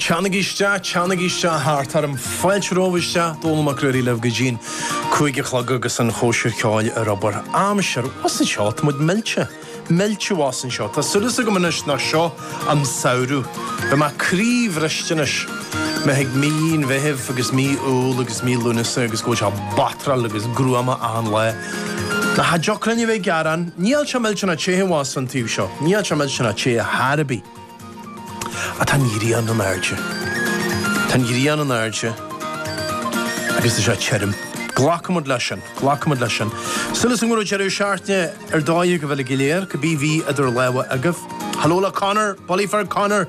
Teannaigí isteach, teannaigí isteach thart orm, fáilte romhaibh isteach, Dónall Mac Ruairí libh go dtí'n cúig a chlog agus an chóisir cheoil ar obair. Aimsir thuas anseo, tá muid millte, millte thuas anseo. Tá súileas agam anois nach seo an samhradh. Beidh mé croíbhriste anois, má thig mí an Mheithimh agus mí Iúil agus mí Lúnasa agus go bhfuil sé batráil agus gruama achan lá. Ach cha dtiocfadh linn a bheith ag gearán, níl sé millteanach te thuas an taobh seo, níl sé millteanach te ar chor ar bith. Ach tá an ghrian in airde. Tá an ghrian in airde agus tá sé tirim. Glacfaidh muid leis sin, glacfaidh muid leis sin. Súileas agam go raibh deireadh seachtaine ar dóigh agaibh uilig go léir, cibé a bhí idir lámha agaibh. Hello le Conor, bulaí fir Conor!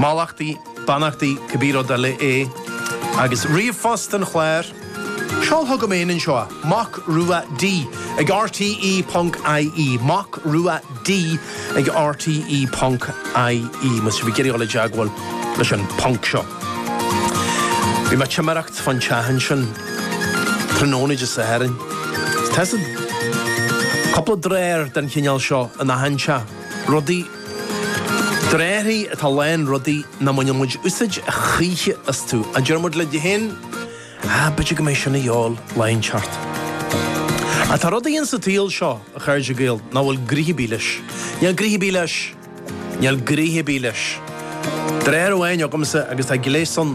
Mallachtaí, beannachtaí, cibé rud eile é, agus ríomhphost an chláir, seol chugam féin anseo, Mac Rua D, ag RTE ponc IE, Mac Rua D ag RTE ponc IE, má tá sibh ag iarraidh dul i dteagmháil leis an ponc seo. Bhí mé ag timireacht fán teach ansin tráthnóna Dé Sathairn. Tá cúpla drawer den chineál seo in achan teach, rudaí. Dráirí atá lán rudaí nach mbainfidh muid úsáid a choíche astu, a deir muid linn féin, ah, b'fhéidir go mbeidh sin a dhíobháil lá inteacht. Ach tá rudaí insa tsaol seo, a chairde Gael, nach bhfuil gnoithe ar bith leis. Níl gnoithe ar bith leis. Níl gnoithe ar bith leis. Drawer amháin agamsa, agus tá gléas ann,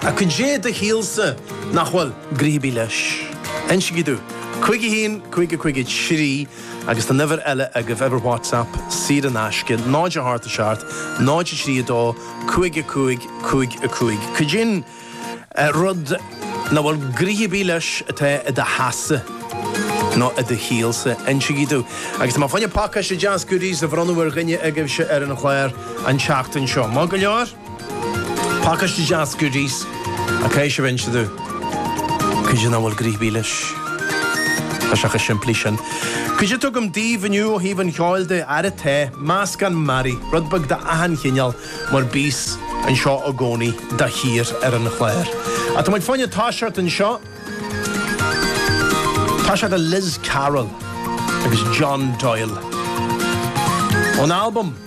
Caidé i do shaolsa nach bhfuil gnoithe ar bith leis. Insígí domh. Cúig a haon, cúig a cúig a trí agus tá an uimhir eile agaibh, uimhir WhatsApp saor in aisce, 0 a hocht 7 0 a trí a dó, cúig a cúig, cúig a cúig. Caidé an rud nach bhfuil gnoithe ar bith leis atá i do theachsa nó i do shaolsa. Insígí domh. Agus tá mé fá choinne pacáiste deas goodies a bhronnadh ar dhuine agaibhse ar an chlár an tseachtain seo. Maith go leor? Pacáiste deas goodies ach caithfidh sibh inse domh caidé nach bhfuil gnoithe ar bith leis, tá sé chomh simplí sin. Caidé atá agam daoibh inniu ó thaobh an cheoil de, ara tá, meascán mearaí, rud beag d'achan chineál mar bíos anseo i gcónaí de shíor ar an chlár. Ach tá muid fá choinne toiseacht anseo, toiseacht le Liz Carroll agus John Doyle ón albam.